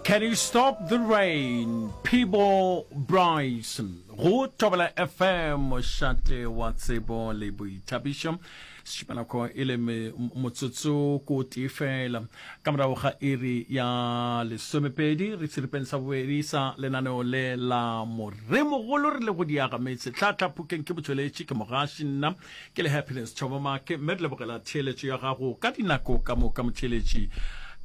Can you stop the rain? Peebo Bryson. Go Tobela FM, mošate wa tsebo le boithabišo. Sešupanako e le motsotso ko tee fela. Ka morago ga iri ya lesomepedi, re tshiripeng sa bobedi sa lenaneo le la moremogolo re le go diaga metse. Tlhatlha phukeng ke botšweletši ke mogaši nna. ke le happiness tšhobomake mme re lebogela theeletšo ya gago ka dinako ka moka motheeletši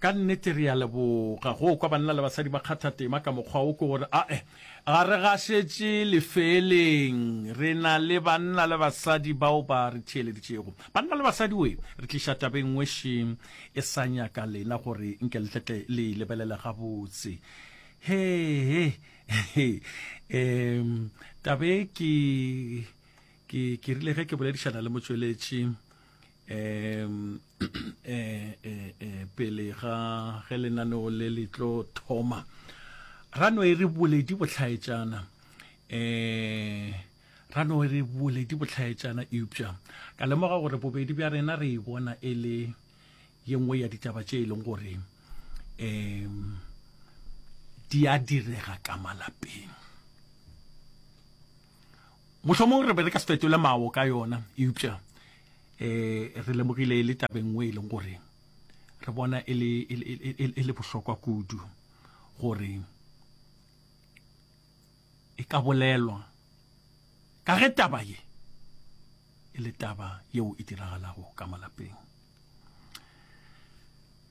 ka nnete re ya leboga go kwa banna le basadi ba kgatha tema ka mokgwa o ke gore ae ga re gašetše lefeeleng re na le banna le basadi bao ba re theeleditšego banna le basadi we re tliša tabeng ngweši e sa nyaka lena gore nke letletle le e lebelele gabotse he he um tabe ke Ke, ke rile ge ke boledišana le motšweletši um e, e, e, pele ga ge lenaneo le le tlo thoma ra no e re boledi botlhaetšana um ra no e re boledi botlhaetšana eupša ka lemoga gore bobedi bja rena re e bona e le ye nngwe ya ditaba tše e leng gore um di a direga ka malapeng Mohlomong re be re ka se fetole mawo ka yona, eupša um re lemogile e le taba e nngwe e leng gore re bona e le, e, e, e, e le bohlokwa kudu gore e ka bolelwa ka ge taba ye e le taba yeo e diragalago ka malapeng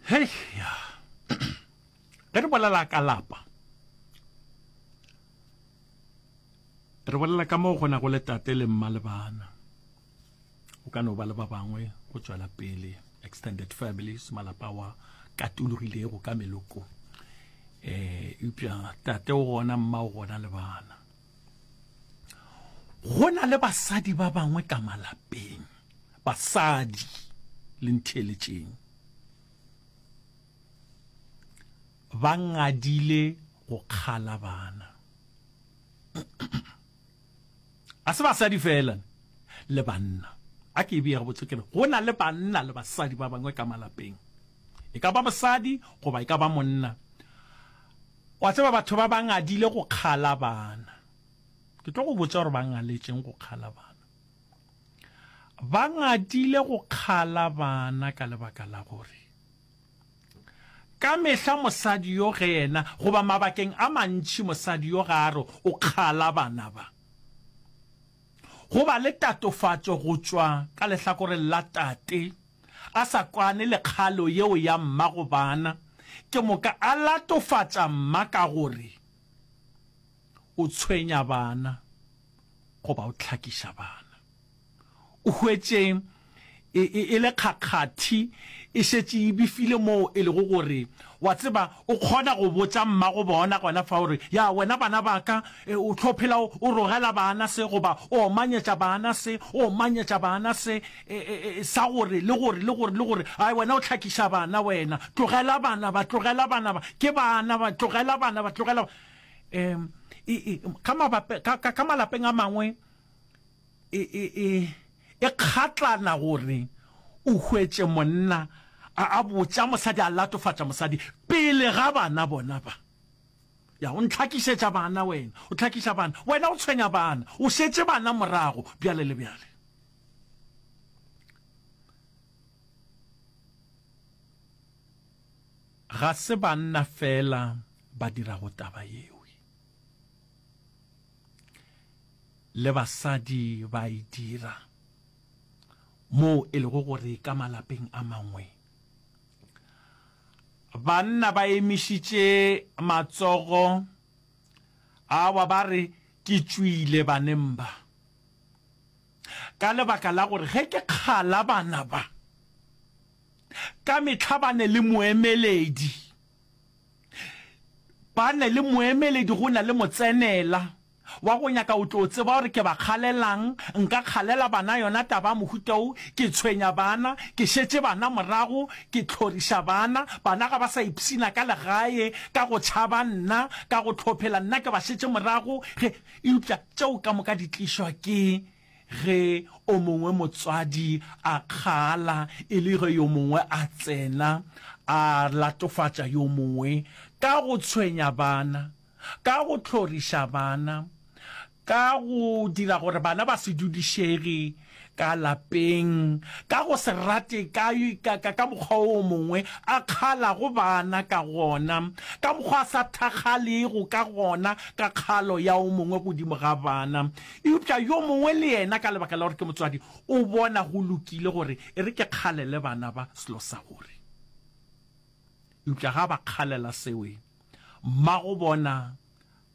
hei ya Ge re bolela ka lapa, re bolela ka moo go na go le tate le mma le bana. Go ka no ba le ba bangwe go tšwela pele, extended families, malapa wa katologilego ka meloko. Eh, eupša tate o gona, mma o gona le bana. Go na le basadi ba bangwe ka malapeng, basadi le ntheeletšeng. ba ngadile go kgala bana. Ga se basadi fela, le banna. A ke e beye gabotse ke re, go na le banna le basadi ba bangwe ka malapeng. E ka ba mosadi goba e ka ba monna. Wa tseba batho ba ba ngadile go kgala bana. Ke tlo go botša gore ba ngaletšeng go kgala bana. ba ngatile go kgala bana ka lebaka la gore ka mehla mosadi yo ge yena goba mabakeng a mantši mosadi yo ga a re o kgala bana ba go ba le tatofatšo go tšwa ka lehlakoreng la tate a sa kwane le kgalo yeo ya mma go bana ke moka a latofatša mma ka gore o tshwenya bana. goba o hlakiša bana. O hwetše e, e, e le kgakgathi e šetše e bifile moo e lego gore wa tseba o kgona go botša mmago bona gona fa gore ya wena bana ba ka e, o tlo phela o rogela bana se goba o omanyetša bana se o omanyetša bana se e, e, e, sa gore le gore le gore le gore ai wena o hlakiša bana wena tlogela bana ba tlogela bana ba ke bana ba tlogela bana ba tlogela Ka malapeng a mangwe e kgatlana gore o hwetše monna a botša mosadi, a latofatša mosadi pele ga bana bona ba. Ya, o ntlhakišetša bana wena, o tlhakiša bana, wena o tshwenya bana, o šetše bana morago, bjale le bjale. Ga se banna feela ba dirago taba yeo. Le basadi ba a e dira, moo e lego gore ka malapeng a mangwe banna ba emišitše matsogo, awa, ba re, Ke tšwile baneng ba, ka lebaka la gore ge ke kgala bana ba. ka mehla ba ne le moemeledi, ba ne le moemeledi go na le motsenela wa go nyaka o tlo tseba gore ke ba kgalelang, nka kgalela bana yona taba ya mohuta wo, ke tshwenya bana, ke šetše bana morago, ke tlhoriša bana, bana ga ba sa ipshina ka legae ka go tšhaba nna, ka go tlhophela nna ke ba šetše morago, ge, eupša tšeo ka moka di tlišwa ke Ge o mongwe motswadi a kgaala e le ge yo mongwe a tsena a latofatša yo mongwe ka go tshwenya bana, ka go hloriša bana, ka go dira gore bana ba se dudišege ka lapeng, ka go se rate ka, ka, ka, ka mokgwa o mongwe a kgaalago bana ka gona, ka mokgwa a sa thakgalego ka gona ka kgalo ya o mongwe godimo ga bana, Eupša yo mongwe le yena, ka lebaka la gore ke motswadi, o bona go lokile gore e re ke kgalele bana ba selo sa gore. Eupša ga ba kgalela seo, mmago bona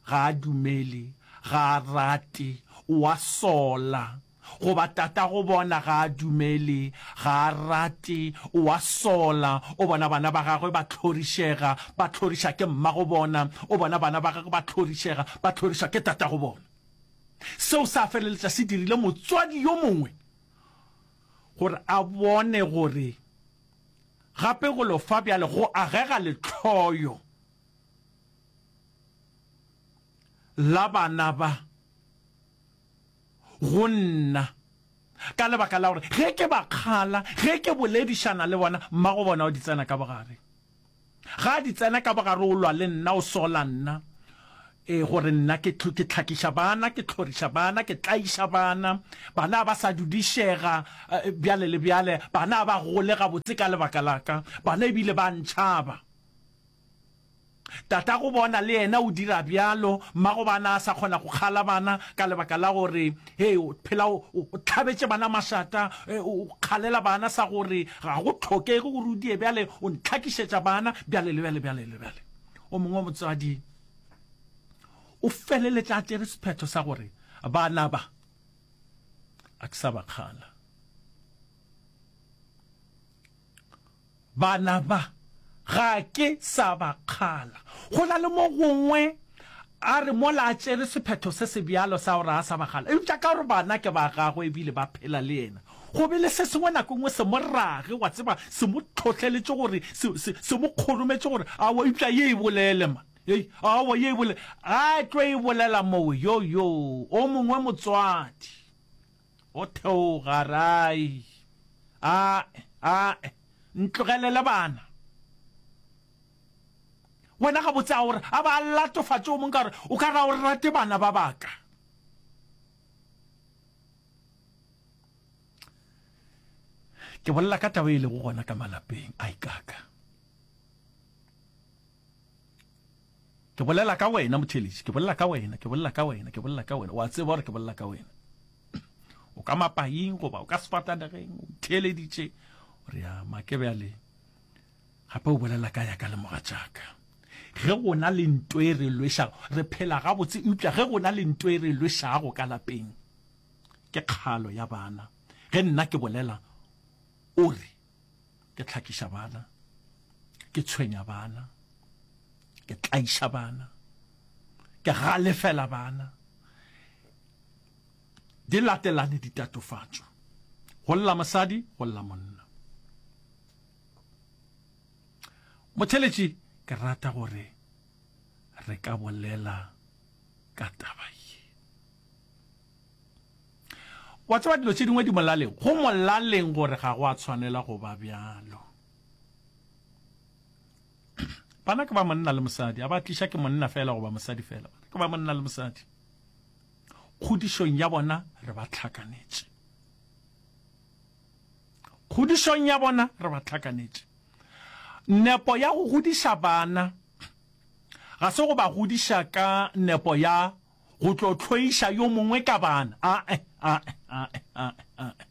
ga a dumele, ga a rate, o a sola, goba tatago bona ga a dumele, ga a rate, o a sola, o bona bana ba gagwe ba tlhorišega, ba tlhoriša ke mmago bona, o bona bana ba gagwe ba tlhorišega, ba tlhorišwa ke tatago bona. Seo sa feleletša se dirile motswadi yo mongwe gore a bone gore gape go lo fa bjale go agega lehloyo la bana ba go nna ka lebaka la gore ge ke ba kgala, ge ke boledišana le bona, mmagobona o di tsena ka bogare. Ga di tsena ka bogare o lwa le nna, o sola nna, ee, gore nna ke ke tlhakiša bana, ke tlhoriša bana, ke tlaiša bana, bana ba sa dudišega bjale le bjale, bana ba gole gabotse ka lebaka la ka, bana e bile ba ntšhaba. Tatago bona le yena o dira bjalo, mmago bana a sa kgona go kgala bana ka lebaka la gore He, o phela o tlhabetše bana mašata, e, o kgalela bana sa gore ga go tlhokege gore o die bjale, o ntlhakišetša bana bjale le bjale bjale le bjale. O mongwe wa motswadi o feleletša a tšere sephetho sa gore bana ba a ke sa ba kgala. Bana ba, ga ke sa ba kgala. Go na le mo gongwe a re mola a tšere sephetho se se bjalo sa gore a sa ba kgala. Eupša ka gore bana ke ba gagwe e bile ba phela le yena, go be le se sengwe nako e nngwe se mo rage, wa tseba, se mo tlhohleletše gore, se, se, se mo kgorometše gore, Aowa, eupša ye e bolele, ma. Hei, aowa, ye e bolele. A tlo e bolela mowe. Yo, yo, o mongwe motswadi. Go theoga ra i, Ae, ae, ntlogelele bana. Wena gabotse a o re, a ba latofatše o mong ka gore o ka ra o rate bana ba baka. Ke bolela ka taba e lego gona ka malapeng a ikaka. Ke bolela ka wena, motheeletši, ke bolela ka wena, ke bolela ka wena, ke bolela ka wena. O a tseba gore ke bolela ka wena. O ka mapaing goba o ka sefatanegeng, o ntheeleditše. O re, ya, ma ke bjale. Gape o bolela ka ya ka le mogatšaka. Ge go na le nto e re lwešago, re phela gabotse, eupša ge go na le nto e re lwešago ka lapeng, ke kgalo ya bana. Ge nna ke bolela, o re, ke tlhakiša bana ke tshwenya bana ke tlaiša bana ke galefela bana di latelane ditatofatšo go lla mosadi go lla monna motheletši ke rata gore re ka bolela ka taba ye wa tseba dilo tše dingwe di molaleng go molaleng gore ga go a tshwanela go ba bjalo bana ke ba monna le mosadi a ba tliša ke monna fela goba mosadi fela bana ke ba monna le mosadi kgodišong ya bona re ba tlhakanetše kgodišong ya bona re ba tlhakanetše nepo ya go godiša bana ga se go ba godiša ka nepo ya go tlo tlhoiša yo mongwe ka bana ae ae ae ae ae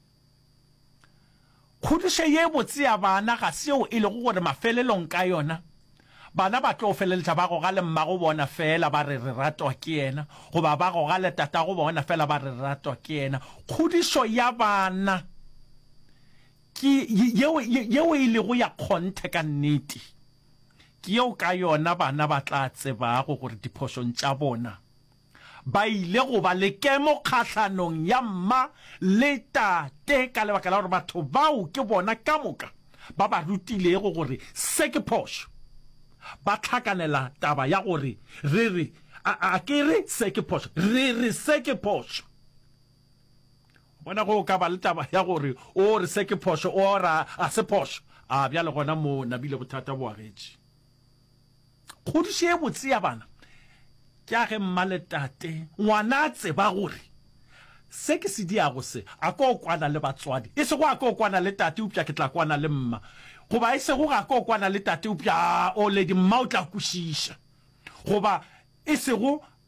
kgodišo ye botse ya bana ga seo e lego gore mafelelong ka yona bana ba tlo feleletša ba goga le mmago bona fela ba re re ratwa ke yena goba ba goga le tatago bona fela ba re re ratwa ke yena kgodišo ya bana ke yeo e lego ya kgonthe ka nnete Ke yeo ka yona bana ba tla tsebago gore diphošong tša bona ba ile go ba le kemo kgahlanong ya mma le tate ka lebaka la gore batho bao ke bona ka moka ba ba rutilego gore se ke phošo. Ba hlakanela taba ya gore re re, a ke re se ke phošo, re re se ke phošo. Bona go ka ba le taba ya gore o re se ke phošo, o ra a se phošo. A bjale gona mo nabile bothata bo agetše. Kgodiše ye botse ya bana ke a ge mma le tate ngwana a tseba gore se ke se diago se a ko kwana le batswadi, e sego a ko kwana le tate eupša ke tla kwana le mma, goba e sego ga ko kwana le tate eupša a o ledi mma o tla kwešiša, goba e sego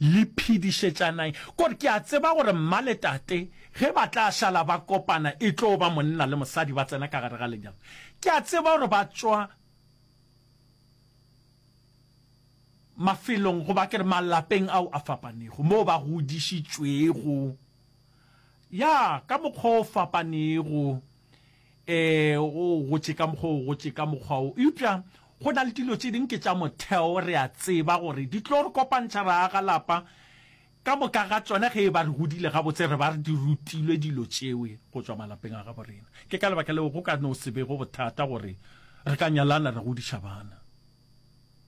Le phedišetšanang, gore ke a tseba gore mma le tate ge ba tla šala ba kopana e tlo ba monna le mosadi ba tsena ka gare ga lenyalo. Ke a tseba gore ba tšwa mafelong goba ke re malapeng ao a fapanego, moo ba godišitšwego, ya, ka mokgwa o fapanego. Ee, o gotše ka mokgwa o gotše ka mokgwa wo. Eupša go na le dilo tše ding ke tša motheo, re a tseba gore di tlo re kopantšha, ra aga lapa ka moka ga tšona. Ge e ba re godile gabotse, re ba re di rutilwe dilo tšewe go tšwa malapeng a gabo rena. Ke ka lebaka leo go ka no se bego bothata gore re ka nyalana re godiša bana.